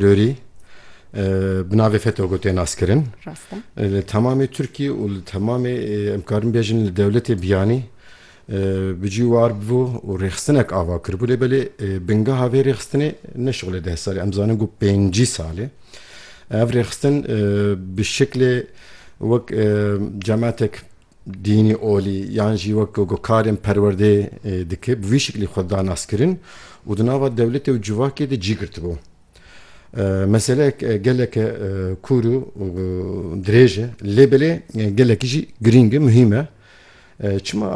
Lorî bi navê FETÖ tê naskirin. Rast e. Li temamê Tirkiyê û li temamê em karin bêjin li dewletê biyanî bi cî war bû û rêxistinek ava kiribû lê belê bingeha vê rêxistinê ne şixulê deh salê em zanin ku pêncî salê ev rêxistin bi şiklê wek cematek dînî olî yan jî wek ku karên perwerdê dike bi vî şiklî xwe da naskirin û di nava dewletê û civakê de cî girtibû. Meseleyek geleke kûr û dirêj e lê belê gelekî jî girîng e, muhîm e. Çima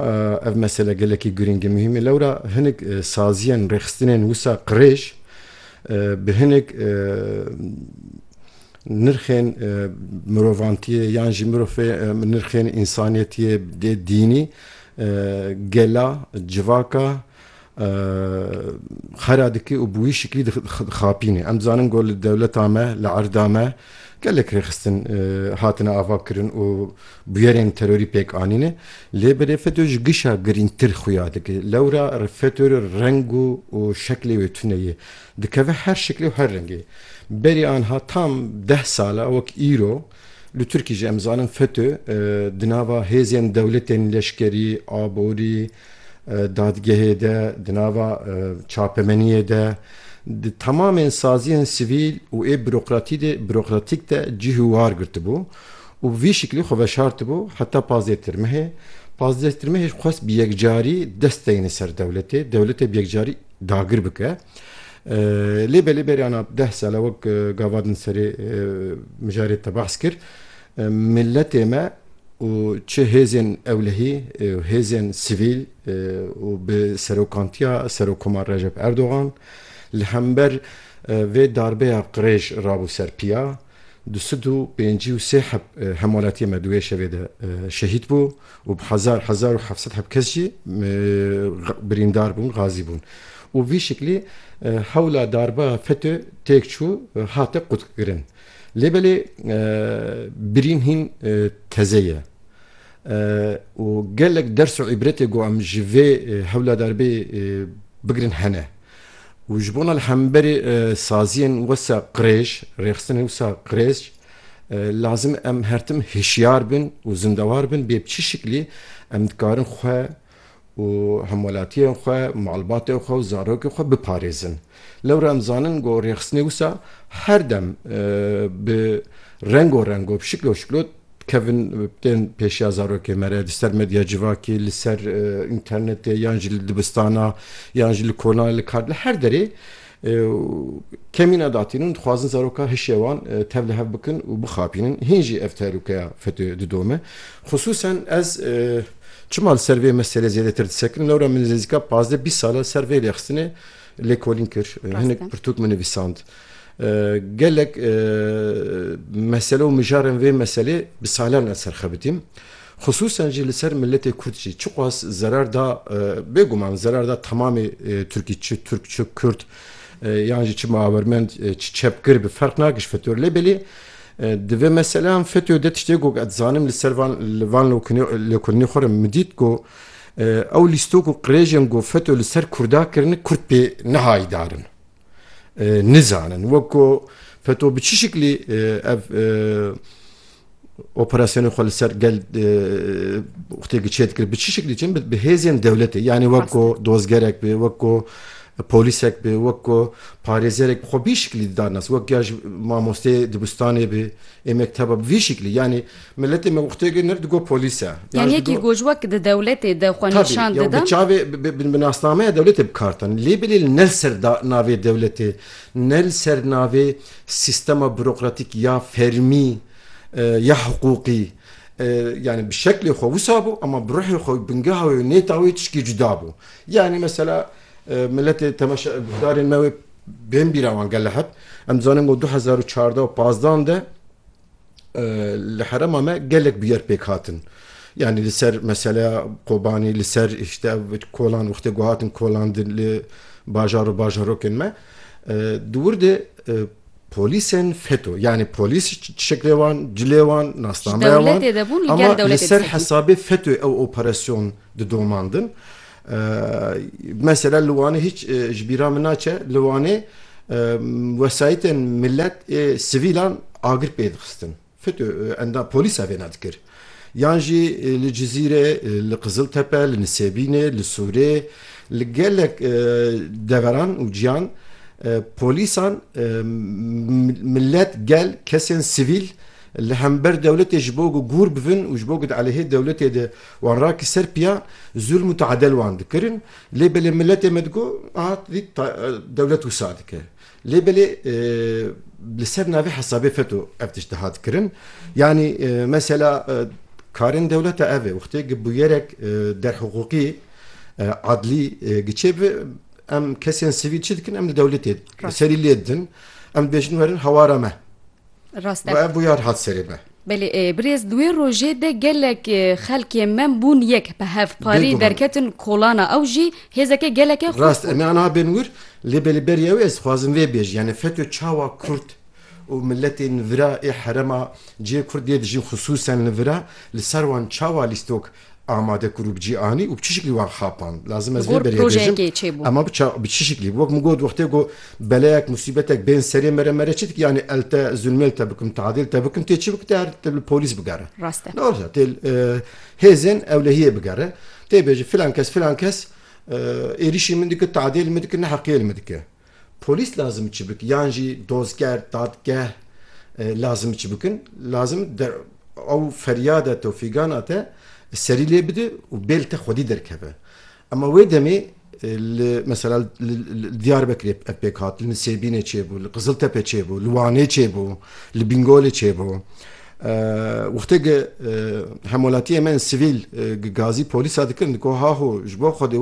ev mesele gelekî girîng û muhîm e? Lewra hinek saziyên rêxistinên wisa qirêj bi hinek nirxên mirovantiyê yan jî mirofê nirxên însaniyetiyê dê dînî gela civaka xera dikî û bi wî şiklî dixapînê. Em dizanin ku li dewleta me, li erda me gelek rêxistin hatine avakirin û bûyerên terorî pêk anîne. Lê berê FETÖ ji gişa girîngtir xuya dike. Lewra FETÖ reng û şeklê wê tune ye. Dikeve her şiklê û her rengê. Berî anha tam deh sal e wek îro li Tirkî jî em zanin FETÖ di nava hêzên dewletên leşkerî, aborî, dadgehê de, di nava çapemeniyê de, di temamên saziyên sivîl û ê bürokratîk de cihî war girtibû û vî şiklî xwe veşartibû heta pazdeh tirmehê. Pazdeh tirmehê jî xwest bi yekcarî dest deyne ser dewletê, dewletê bi yekcarî. dagir bike. Lê belê beriyana deh sale wek gavadin serê mijarê te behs kir miletê me û çi hêzên ewlehî û hêzên sivîl û bi serokantiya Serokkomar Recep Erdogan li hember vê darbeya qirêj rabû ser piya. Du sed û pêncî û sê heb hemalatiyên me di wê şevê de şehîd bû û bi hezar, hezar û heft sed heb kes jî birîndar bûn, gazî bûn û vî şiklî hewla darba FETÖ têk çû hate qutkirin. Lê belê birîn hîn teze ye û gelek ders û îbretê ku em ji vê hewla darbeyê bigirin hene. Û ji bona li hemberî saziyên wisa qirêj, rêxistinên wisa qirêj lazim em her tim hişyar bin û zindewar bin bê bi çi şiklî em dikarin xwe û hemwelatiyên xwe, malbatên xwe û zarokên xwe biparêzin. Lewra em zanin ku rêxistinê wisa her dem bi rengo rengo, bi şiklo şiklo, Kevin tên pêşiya zarokê me re di ser medya civakê, li ser înternetê yan jî li dibistana yan jî li kolan li kar li her derê kemîna datînin û dixwazin zaroka hişê wan tev li hev bikin û bixapînin. Hîn jî ev tehlûkeya FETÖ'yê didome. Xisûsen ez çima li ser vê meselê zêdetir disekirim, lewra min nêzîka pazdeh bîst sal e li ser vê lêxistinê lêkolîn kir. Hinek pirtûk min nivîsand. Gelek mesele û mijarên vê meselê bi salan ez serxebitîm. Xisûsen jî li ser miletê Kurd jî çiqas zerar da, bêguman zerar da temamê Tirkî çi Tirk çi Kurd yan jî çi miawermend çi çepgir bi ferq nakir ji FETÖ re lê belê di vê meseleyan FETÖ de tiştê ku ez zanim li ser van li van lêkolînê xwe re min dît ku ew lîstok û qirêjên ku FETÖ li ser Kurda kirine Kurd pê nehayîdar in. nizanin wek ku feto bi çi şiklî ev operasyonên xwe li ser gel xtêkî çê dikir bi çi şiklî çin bi hêzên dewletê yanî wek ku dozgerek bê wek ku polîsek bê wek ku parêzerek xwe bî şiklî didanas wek ya ji mamosteyê dibistanê bê ê mekteba bi vî şiklî yanî Miletê me wextê ke nir digot polîs e. Yan yekî goj wek di dewletê de xwe nîşan dida. Tabî, bi çavê, bi nasnameya dewletê bi kar tane. Lê belê li ne li ser navê dewletê, ne li ser navê sîstema burokratîk ya fermî ya hiqûqî yanî bi şeklê xwe wisa bû ema bi ruhê xwe û bingeha wê û nêta wê tişkî cuda bû. Yanî mesela miletê temeşa guhdarên me wê bên bîra wan gele heb. Em dizanin ku du hezar û çardeh û pazdeh de Li herema me gelek bûyer pêk hatin. Yani li ser meseleya Kobanê, li ser işte kolan wextê ku hatin kolandin li bajar û bajarokên me. Di wir de polîsên FETÖ yani polîs şeklê wan, cilê wan, nasnameya wan ama li ser hesabê FETÖ ew operasyon didomandin. Mesela li Wanê hîç ji bîra min naçe, li Wanê wesayîtên milet ê sivîlan agir pê dixistin. Fetû endam polîsa vêna dikir. Yan jî li Cizîrê, li Qiziltepe, li Nisêbînê, li Sûrê, li gelek deveran û ciyan polîsan milet, gel, kesên sivîl li hember dewletê ji bo ku gûr bibin û ji bo ku di eleyhê dewletê de Wan ra ki ser piya zulm û taadel wan dikirin lê belê miletê me digo aha tu dî dewlet wisa dike. Lê belê li ser navê hesabê feto ev tişt dihat kirin. Yanî mesela karên dewleta ev e wextê ki bûyerek derhiqûqî adlî ki çêbibe em kesên sivîl çi dikin em li dewletê serî lê didin. Em dibêjin werin hawara me Rast e. Û ev bûyar hat serê be. Belê e, birêz di wê rojê de gelek xelkê me bûn yek bi hev parî Bêguman. derketin kolana ew jî hêzeke geleke xurt Rast e, bû. me aniha bên wir, lê belê berî ew ez dixwazim vê bêjim, yanî FETÖ çawa kurd û miletên li vira ê herema cihê kurd dê dijîn xisûsen li vira li ser wan çawa lîstok Amade ku rûbicî anî û bi çi şiklî wan xapand. Lazim ez vê berê bêjim ema bi çi şiklî. Wek min got wextê ku beleyek musîbetek bên serê me re me re çi dike yanî el te zulmêl te bikim tadêl te bikim tê çi bike tê her tê li polîs bigere. Rast e. Rast e tê li hêzên ewlehiyê bigere tê bêje filan kes filan kes êrîşî min dike tadêl min dike neheqiyê li min dike. Polîs lazim çi bik yan jî dozger, dadgeh lazim çi bikin? Lazim ew feryada te û fîgana te serî lê bide û bêl te xwedî derkeve. Ema wê demê li mesela li Diyarbekirê ev pêk hat, li Nisêbînê çêbû, li Qiziltepe çêbû, li Wanê çêbû, li Bingolê çêbû. Wextê gi hemwelatiyên me yên sivîl gi gazî polîsa dikirin, digo haho ji bo xwedê